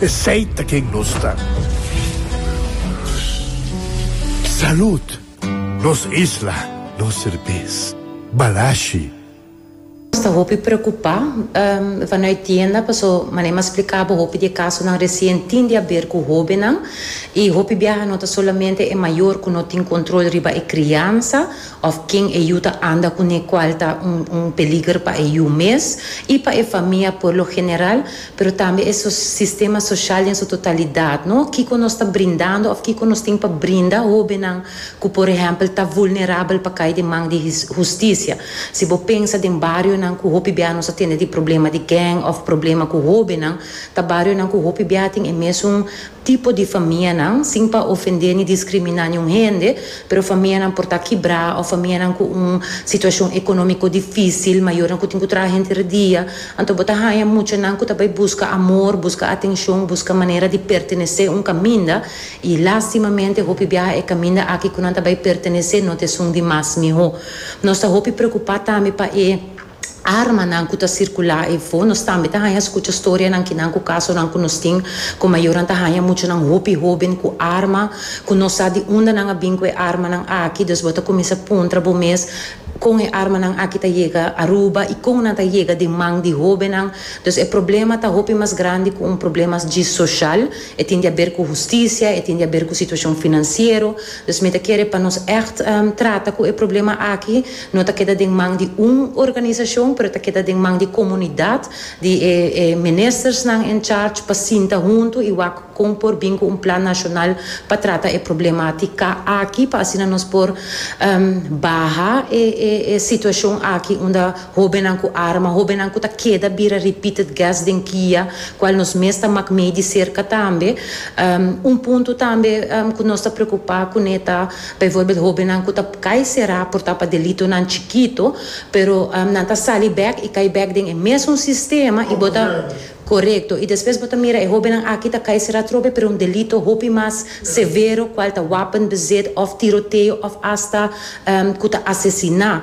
Esey ta ken nos ta. Salud! Nos isla, nos serbes. Balashi. Nos ta hopi preocupa vano e tienda paso manera mas splica bo hopi di e casonan recien tin di haber cu hobennan y hopi biaha no ta solamente e mayor cu no tin control riba e criansa of ken e yu ta anda cune cual ta un un peliger pa e yu mes y pa e famia por lo general. pero tambe e sistema social den su totalidat, no? Kiko nos ta brindando of kiko nos tin pa brinda hobennan ku por ehèmpel ta vulnerabel pa kai den man di hustisia? Si bo pensa den barionan ku hopi bia nos a tende di problema di geng of problema ku hobennan, ta barionan ku hopi bia tin e mesun tipo di famianan, sin pa ofendé ni diskriminá niun hende, pero famianan por ta kibrá òf famianan ku un situashon ekonómiko difísil, mayornan ku tin ku traha henter e dia. Anto bo ta haña mucha nan ku ta bai buska amor, buska atenshon, buska manera di pertenesé un kaminda, i lástimamente hopi biaha e kaminda aki ku nan ta bai pertenesé no ta esun di mas mihó. Nos ta hopi preokupá tambe pa e. armanan ku ta sirkulá efo. Nos tambe ta haña skucha storianan kinan ku kasonan ku nos tin ku mayornan ta haña muchanan hopi hóben ku arma ku no sa di unda nan a bin ku e armanan aki. Dus bo ta kuminsá puntra bo mes, Kon e armanan aki ta yega Aruba i kon nan ta yega den man di hóbennan? Dus e problema ta hopi mas grandi ku un problema djis soshal. E tin di aber ku hustisia, e tin di aber ku situashon finansiero. Dus mi ta kere pa nos ègt trata ku e problema aki. No ta keda den man di un organisashon, pero ta keda den man di komunidat, di e e ministersnan en charge pa sinta huntu i wak kon por bin ku un plan nashonal pa trata e problematika aki pa asina nos por baha e e e situashon aki unda hobennan ku arma, hobennan ku ta keda bira repeated guest den kia, kual nos mes ta mak mei di serka tambe. Un punto tambe ku nos ta preokupa kuné ta. Bijvoorbeeld hóbennan ku ta kai será por ta pa delitonan chikitu, pero nan ta sali bèk i kai bèk den e mesun sistema i bo ta, korekto, i despues bo ta mira e hóbennan aki ta kai será trobe pero un delito hopi mas severo kual ta wapenbezit òf tiroteo òf asta ku ta asesiná.